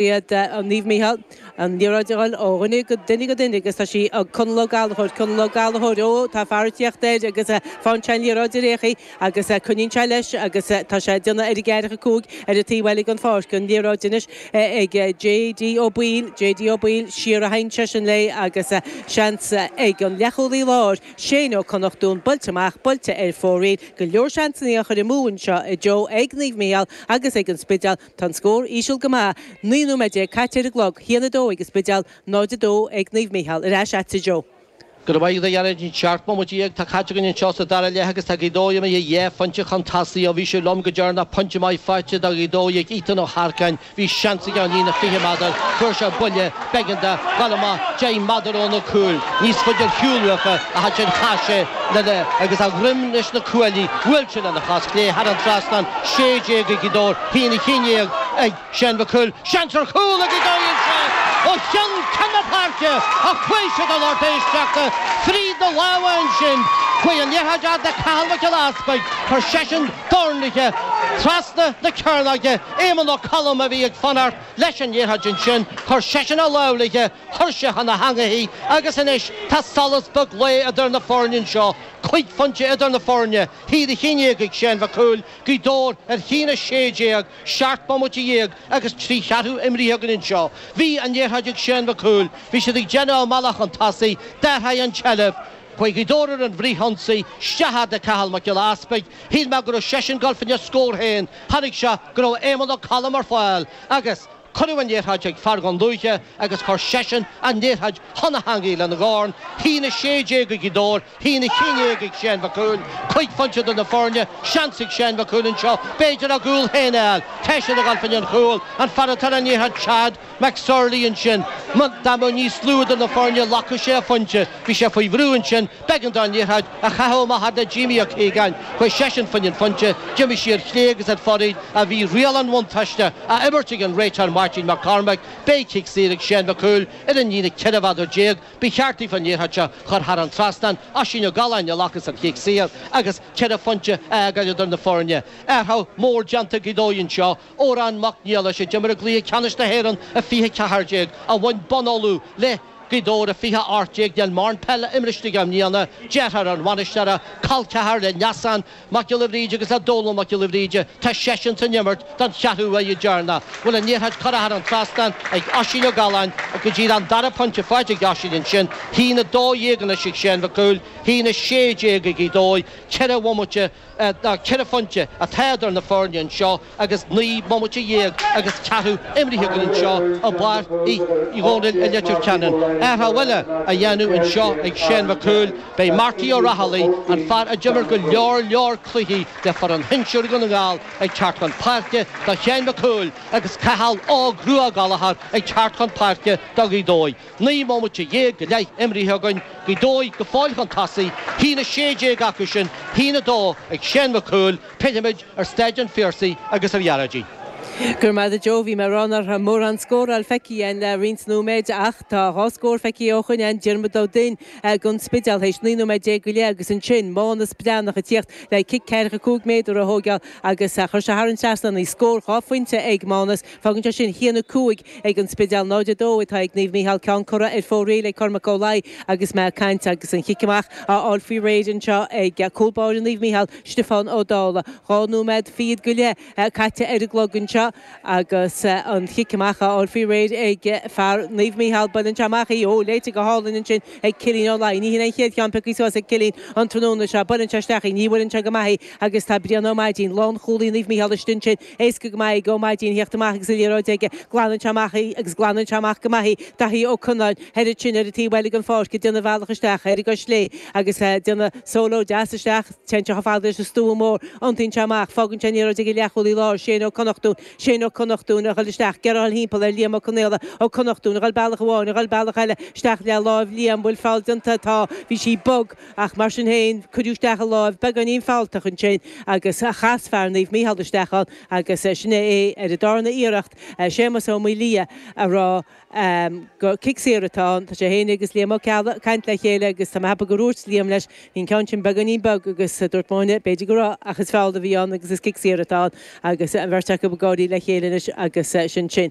B'iad Naomh Mícheál an liathróid ag goil ó dhuine go duine go duine agus tá sí ag Conal Ó Gallchóir. Conal Ó Gallchóir, Ó, tá fear ag tíocht air agus fághann sé an liathróid ar fhéachaí agus coinníonn sé leis agus tá sé ag déanamh ar an gceathracha a cúig ar an taobh eile den pháirc. An liathróid anois ag J.D. Ó Baoill. J.D. Ó Baoill, siar a théann seisean léi agus seans ag an leathchúlaí láir, Shane Ó Connachtún, buailte amach, buailte ar fóraoil. Go leor seansannaí á chur amú anseo inniu ag Naomh Mícheál agus ag an Spidéal. Tá an scór íseal go maith, 19 nóiméad caite ar an gclog, haon a dó ag an Spidéal 0, 2 ag Naomh Mícheál. Ar ais agat Joe. Go raibh maith agat a Ghearóidín. Seacht mbomaite dhéag atá caite againn anseo sa dara leath agus tá Gaoth Dobhair imithe dhá phointe chun tosaigh. Ó bhí sibh liom go deireanach pointe maith faighte do Ghaoth Dobhair ag Ethan Ó hEarcáin, bhí seans aige ón líne 20 meadar, fuair sé buille, B'éigean dó dhul amach deich meadar ó na cúil níos faide ar shiúl uafa ach ansin chaith sé le le agus a dhruim leis na cuaillí. Bhuail sé lena chos chlé thar an trasnán sé déag ag Gaoth Dobhair, a haon a haon déag ag Séan Mhic Cumhaill. Seans ar chúl ag Gaoth Dobhair ó chionn ceann na páirce ach chuaigh sé do lorg éisteachta fríd na lámha ansin. Chuaigh an liathróid fhad le Cathal Mac Giolla Easpaig. Chuir seisean dorn léithe trasna na cearnóige. Éamonn Ó Colm a bhí ag fanacht. Leis an liathróid ansin, chuir seisean a lámh léithe, chuir sé chun na heangaí í, agus anois tá solas beag lae idir na foirne anseo, cúig phointe idir na foirne, a haon a haon déag ag Séan Mhic Cumhaill, Gaoth Dobhair ar a haon a sé déag, seacht bomaite dhéag agus trí cheathrú imrithe againn anseo. Bhí an liathróid ag Séan Mhic Cumhaill, bhí siad ag déanamh a mbealach chun tosaigh, d'athraigh an tseilbh chuig Gaoth Dobhair ar an bhfrith-ionsaí, isteach fhad le Cathal Mac Giolla Easpaig, shíl mé go raibh seisean ag gabháil faoina scór féin, Chonaic sé go raibh Éamonn Ó Colm ar fáil agus cuireadh an liathróid chuig fear Dhún Lúiche agus chuir seisean an liathróid chun na heangaí lena dhorn, haon 16 ag Gaoth Dobhair, haon 11 ag Séan Mhic Cumhaill, cúig phointe idir na foirne, seans ag Séan Mhic Cumhaill anseo b'fhéidir a gcúl féin a fháil, tá siad ag dul faoin chúl, an fear atá ar an liathróid, Chad. McSorley ansin. Dá mbeadh níos lú idir na foirne ghlacfadh sé a phointe. Bhí sé faoi bhrú ansin. B'eigean dó an liathróid a chaitheamh amach fhad le Jeimí Ó Ciagáin. Chuaigh seisean faoina phointe. D'imigh sí ar chlé agus ar fóraoil ach bhí riail an bhuntáiste á imirt ag an réiteoir Máirtín Mac Cormaic. Beidh cic saor ag Séan Mac Cumhaill ar an líne ceithre mheadar déag. Ba cheart daofa an liathróid seo a chur thar an trasnán. Oisín Ó Galláin a ghlacas an cic saor agus ceithre phointe a fhágáil idir na foirne. Athrú mór déanta ag Gaoth Dobhair anseo. Odhrán Mac Niallais, a d'imir i gCluiche Ceannais na hÉireann i 20 14, a bhain bonn Uladh le Gaoth Dobhair i 20 18 níl mórán peile imrithe aige i mbliana, deartháir an bhainisteora, col ceathar le Neasán Mac Giolla Bhríde agus le Dónall Mac Giolla Bhríde, tá seisean san imirt don cheathrú dheireanach, bhuel an liathróid curtha thar an trasnán ag Oisín Ó Galláin ach go dtí an dara pointe faighte ag Oisín ansin, haon 12 anois ag Séan Mhic Cumhaill, haon 16 ag Gaoth Dobhair, ceithre bhomaite Ná ceithre phointe atá idir na foirne anseo agus naoi mbomaite dhéag agus ceathrú imrithe againn anseo i bPáirc Uí Dhónaill i Leitir Ceanainn. Athrú eile á dhéanamh anseo ag Seán Mac Cumhaill, beidh Marty Ó Raghallaigh, an fear a d'imir go leor leor cluichí le foireann shinsir Dhún na nGall, ag teacht chun páirce do Sheán Mac Cumhaill agus Cathal Óg Rua Gallagher ag teacht chun páirce do Ghaoth Dobhair. Naoi mbomaite dhéag go leith imrithe againn Gaoth Dobhair go fóill chun tosaigh, 1 16 acu sin, 1 2 ag Seán Mac Cumhaill, pillfimid ar Stáid an Phiarsaigh agus ar Ghearóidín. Go raibh maith agat a Joe, bhí mé ag rá nár raibh mórán scóráil feicthe again le roinnt nóiméid ach tá dhá scór feicthe ó shoin ann, Diarmuid Ó Duinn gon Spidéal théis 19 nóiméad go leith agus ansin Mánas Breathnach ag tíocht le cic ceathracha cúig méadar a thóigeál agus chuir sé thar an trasnán í. Scór dhá phointe ag Mánas, fágann sé sin 1 5. ag an Spidéal. 0 2 atá ag Naomh Mícheál ceann curtha ar fóraoil ag Cormac Ó Laoi agus mé ag caint agus an cic amach á fháil faoi réir anseo ag cúl báire Naomh Mícheál, Stiofán Ó Dálaigh. Dhá nóiméad fichead go leith caite ar an gclog anseo agus an cic amach á fháil faoi réir ag fear Naomh Mícheál. Buaileann sé amach í. Ó, léite go hálainn ansin ag Cillín Ó Laoi. Ní shin an chéad cheann pioctha suas ag Cillín an tráthnóna seo. Buaileann sé isteach í. Ní bhuaileann sé go maith í agus tá Brian Ó Maidín, lánchúlaí Naomh Mícheál istigh ansin. Éasca go maith ag Ó Maidín theacht amach agus an liathróid aige. Glanann sé amach í agus glanann sé amach go maith í. Daithí Ó Conláin, thoir ansin ar an taobh eile den pháirc ag déanamh a bhealach isteach ar an gcois chlé agus ag déanamh solo deas isteach. Téann sé chomh fada leis an stua mór. Iontaíonn sé amach. Fágann sé an liathróid ag an leathchúlaí láir, Shane Ó Connachtúin. Shane Ó Connachtúin ag dhul isteach. Ag iarraidh a dhul thimpeall ar Liam Ó Conaola. Ó Connachtúin ag dhul bealach amháin, ag dhul bealach eile. Isteach le láimh Liam. Bhfuil feall déanta? Tá. Bhí sí bog. Ach mar sin féin, cuireadh isteach an láimh beagáinín fealltach ansin agus chas fear Naomh Mícheál isteach ann agus sin é é ar an darna iarracht, Séamas Ó Maoildhia, a rá gur cic saor atá ann. Tá sé féin agus Liam Ó Ceallaigh ag caint le chéile agus tá mé a cheapadh gur dhúirt Liam leis, bhí an ceann sin beagáinín bog agus dúirt mo dhuine, b'fhéidir go raibh ach is feall a bhí ann agus is cic saor atá ann agus an bheirt acu ag gáirí le chéile anois agus sin sin.